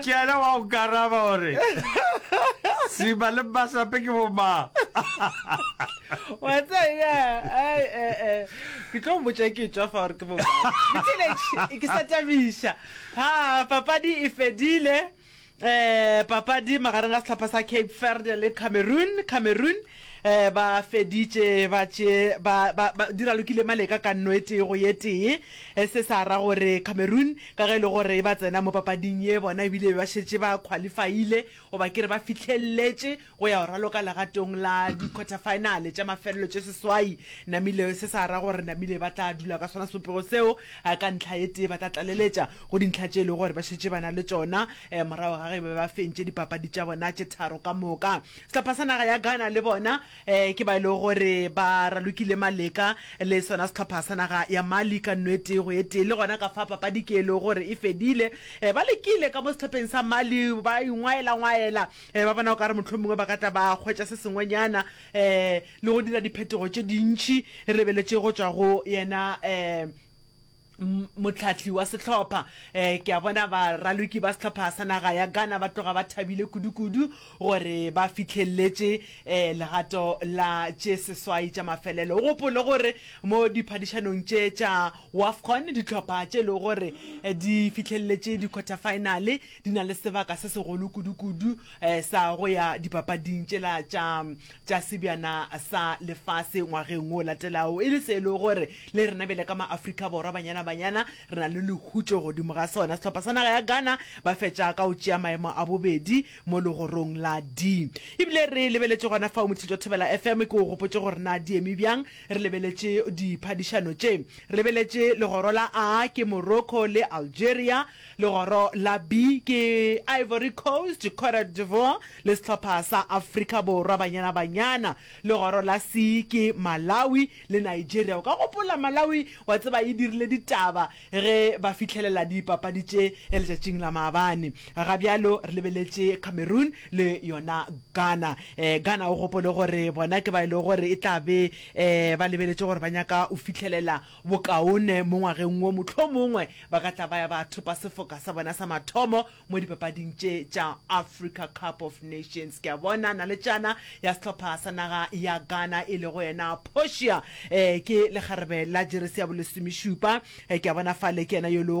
ke yena wa go karaba gore sima le masape ke bomang wa tsaya ai e e ke tlo mmotsa ke tswa fa gore ke bo ke ke sa tabiša ha papadi e fedile eh papadi magareng a setlhopha sa Cape Verde le Cameroon Cameroon Eh, ba feditše ba tše ba, ba, ba di ralokile maleka ka nno e tee go ye tee eh, se sa ra gore cameroon ka ge e le gore e ba tsena mo papading ye bona ebile be ba šetše ba qualifaile goba ke re ba fihlelletše go ya go raloka legatong la di-quarter finale tša mafelelo tše seswai namile se sa ra gore namile ba tla dula ka sona sepopego seo eh, ka ntlha ye tee ba tla tlaleletša go dintlha tše e le gore ba šetše ba na le tšona eh, morago ga ge ba be ba fentše dipapadi tša bona tše tharo ka moka Sehlopha sa naga ya Ghana le bona ke ba e lego gore ba ralokile maleka le sona sehlopha sa naga ya Mali ka nno e tee go e tee. Le gona ka fa papadi ke e lego gore e fedile, ba lekile ka mo sehlopheng sa Mali ba ingwaela-ngwaela ba bona okare mohlomongwe ba ka tla ba hwetša se sengwenyana le go dira diphetogo tše dintši re lebeletše go tšwa go yena Mohlahli wa sehlopha, Ke a bona baraloki ba sehlopha sa naga ya Ghana ba tloga ba thabile kudukudu gore ba fihlelletše legato la tše seswai tša mafelelo. O gopole gore mo diphadišanong tše tša Wafcon, dihlopha tše e lego gore di fihlelletše dikhwathafaenale di na le sebaka se segolo kudukudu sa go ya dipapading tšela tša tša sebjana sa lefase ngwageng o latelago e le se e le gore le rena bjale ka maafrika borwa banyana banyana re na le lehutšo godimo ga sona sehlopha sa naga ya ghana ba fetša ka go tšea maemo a bobedi mo legorong la d ebile re lebeletše gona fao mothito thobela fm ke o gopotše gore na di eme bjang re lebeletše diphadišano tše re lebeletše legoro la a ke morocco le algeria Legoro la B ke Ivory Coast, Cote d'Ivoire le sehlopha sa Afrika Borwa, Banyana Banyana. Legoro la C ke Malawi le Nigeria. O ka gopola Malawi wa tseba e dirile ditaba ge ba fihlelela dipapadi tše letšatšing la maabane. Ga bjalo re lebeletše Cameroon le yona Ghana. Ghana o gopole gore bona ke ba e lego gore e tla be ba lebeletše gore ba nyaka o fihlelela Bokaone mo ngwageng wo, mohlomongwe ba ka tla ba ya ba thopa sefoka sa bona sa mathomo mo dipapading tše tša Africa Cup of Nations. Ke a bona naletšana ya sehlopha sa naga ya Ghana e lego yena Portia, ke lekgarebe la jeresi ya bolesomešupa, ke a bona fale ke yena yo e lego